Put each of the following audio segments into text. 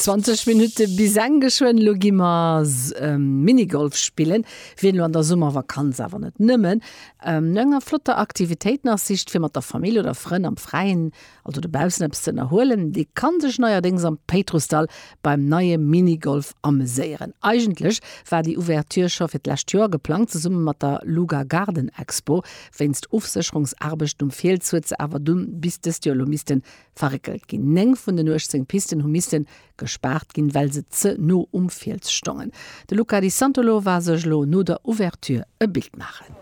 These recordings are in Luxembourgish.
20 Minutte bis eng geschwënn. Lo gi mer ähm, Minigolf spillen. Wien lo an der Summervakanz awer net nëmmen ähm, no enger flotter Aktivitéit nach sicht, fir mat der Famill oder Frënn am Fräien, also dobaussen, eppes ze ënnerhuelen, dee ka sech neierdéngs am Péitrussdall beim neie Minigolf ameséieren. Eigentlech war déi Ouverture scho fir d'lescht Joer geplangt, zesumme mat der Luga Garden Expo. Wéinst Ofsécherungsaarbechten um Fiels huet se awer dunn bis dëst Joer lo misste Verréckelt ginn. Néng vun den 18 Pisten hu misse gespaart ginn, well se ze no um Fiels stongen. De Luca Di Santolo war sech elo no der Ouverture e Bild maachen.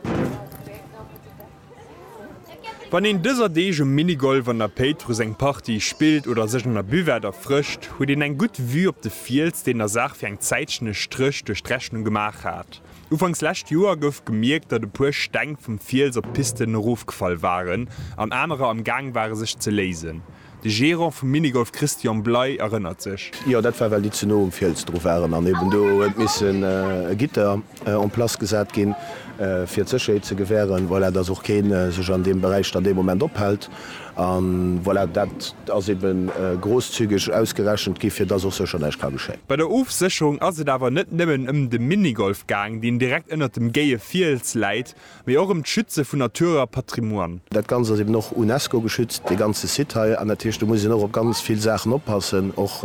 Wann een dëser Deeg um Minigolf an der Péitruss eng Partie spillt oder sech an der Buvette erfrëscht, huet een eng gutt Vue op de Fiels, deen der Saach fir eng Zäitchen e Stréch duerch d'Rechnung gemaach hat. Ufanks lescht Joer gouf gemierkt, datt e puer Steng vum Fiels op d'Pisten erofgefall waren an anerer am Gaang ware sech ze léisen. De Gerant vum Minigolf Christian Bley erënnert sech. Jo, dat war well déi ze no um Fiels dru waren an eben do huet missen e Gitter en place gesat ginn, fir d'Sécherheet ze gewähren. Voilà, datt och kee sech an deem Beräich dann dee Moment ophält. A voilà, dat ass ebe grosszügeg ausgerechent gi fir dass och sécher näischt ka geschéien. Bei der Ofsécherung ass et awer net nëmmen ëm de Minigolf gaang, deen direkt ënnert dem géie Fiels läit, mee och ëm d'Schütze vun Natur a Patrimoine. Dat Ganzt ass eben och UNESCO geschützt, dee ganze Site hei, an dat heescht, do muss een och op ganz vill Saachen oppassen. Och,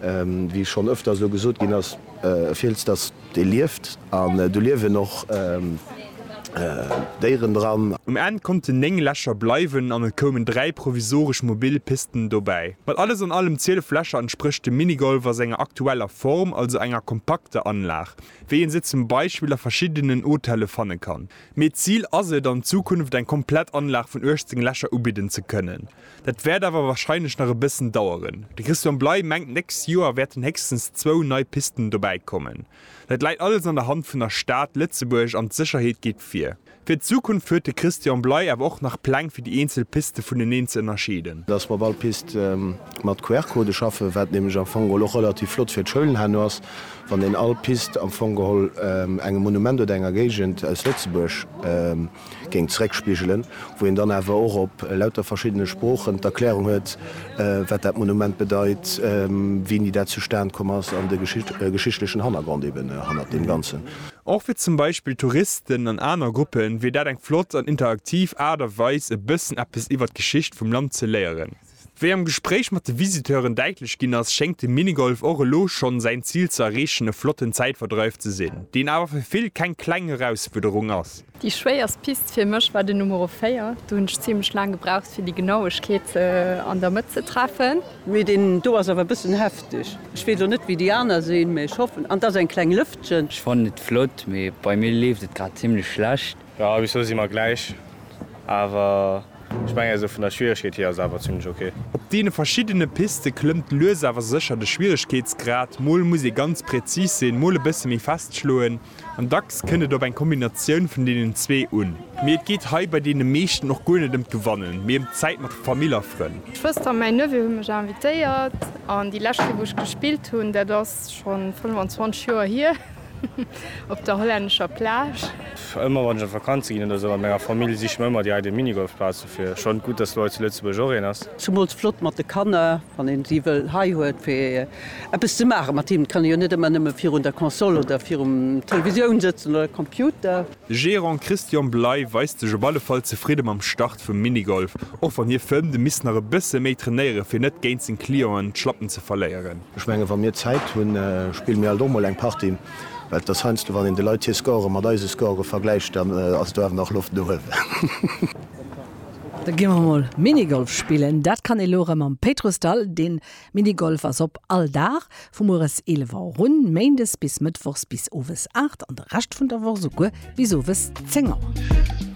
wéi schonn ëfters elo gesot ginn ass, e Fiels, dat Dee lieft, an do liewen och Déieren dran. Um Enn konnten 9 Lächer bleiwen an et koumen 3 provisoresch mobil Pisten dobäi. Mat alles an allem 12 Lächer entsprécht de Minigolf a senger aktueller Form also enger kompakter Anlag, wéi een se zum Beispill a verschiddenen Hotelle fanne kann. Mee d'Zil ass et, an Zukunft eng komplett Anlag vun 18 Lächer ubidden ze kënnen. Dat wäert awer warscheinlech nach e bëssen daueren. De Christian Bley mengt d'nächst Joer wäerten héchstens zwou nei Pisten dobäikommen. Dat läit alles an der Hand vun der Stad Lëtzebuerg an d'Sécherheet geet vir. Fir d'Zukunft huet de Christian Bley awer och nach Pläng fir déi eenzel Piste vuneneen ze ënnerscheeden. Datt mer op all Pist mat QR-Code schaffen, wat nämlech am Fong geholl och relativ flott fir d'Schoulen herno ass, wann een all Pist am Fong geholl engem Monument oder enger Géigend aus Lëtzebuerg géing zeréckspigelen, wou een dann awer och op lauter verschiddene Sproochen d'Erklärung huet, wat dat Monument bedeit, wéini dat zustan komm ass an de geschichtlechen Hannergrond eben hannert deem Ganzen. Och fir zum Beispill Touristen an aner Gruppen wier dat eng flott an interaktiv Aart a Weis, e bëssen eppes iwwert d'Geschicht vum Land ze léieren. Wéi am Gespréich mat de Visiteuren däitlech ginn ass, schéngt de Minigolf och elo schonn säin Zil ze erreechen, e flotten Zäitverdreif ze sinn, deen awer fir vill keng kleng Herausfuerderung ass. Déi schwéierst Pist fir mech war de Numero 4, do hunn ech zimlech laang gebraucht fir déi Genauegkeet an der Mëtt ze treffen. Mee deen do ass awer e bëssen hefteg. Ech weess och net wéi déi aner sinn, mee ech hoffen, an et ass eng kleng Lëftchen. Ech fannen et flott, mee bei mir leeft et grad zimlech schlecht. Jo bis lo si mer gläich, awer ech mengen esou vun der Schwieregkeet hier ass et awer zimlech ok. Op deene verschiddene Piste klëmmt lues awer sécher de Schwieregkeetsgrad, mol muss ee ganz präzis sinn, mol e bësse méi fest schloen an dacks kënnt et op eng Kombinatioun vun deenen zwee un. Mee et geet hei bei deene meeschten och guer net ëm d'Gewannen, mee ëm d'Zäit mat Famill a Frënn. D'Schwëster a mäin Neveu hu mech invitéiert an déi lescht Kéier wou ech gespillt hunn, dat ass schonn 25 Joer hier, Op der hollännescher Plage. Ëmmer wann ech op Vakanze ginn oder sou mat menger Famill, siche mer ëmmer déi eidel Minigolfplaze fir. Schonn gutt, dass elo hei zu Lëtzebuerg och een ass. Zemools flott mat de Kanner, wann een si wëll hei huet fir eppes ze maachen mat hinnen. Et kann ee jo net ëmmer nëmme virun der Console oder virum Televisioun sëtzen oder Computer. De Gerant Christian Bley weist sech op alle Fall zefridde mam Start vum Minigolf, och wann hie fëmmt, e misst nach e bësse méi trainéieren, fir net géint seng Clienten d'Schlappen ze verléieren. Ech mengen, wa mir Zäit hunn, spille mir alt och mol eng Partie. Well et ass heiansdo, wann een de Leit hir Score mat eise Score vergläicht, dann ass do awer nach Loft no uewen. Da gi mer mol Minigolf spillen. Dat kann ee elo erëm am Péitrussdall. Deen Minigolf ass op all Dag, vu mueres 11 Auer un, méindes bis mëttwochs bis owes 8 an de Rescht vun der Woch esouguer bis owes 10 Auer.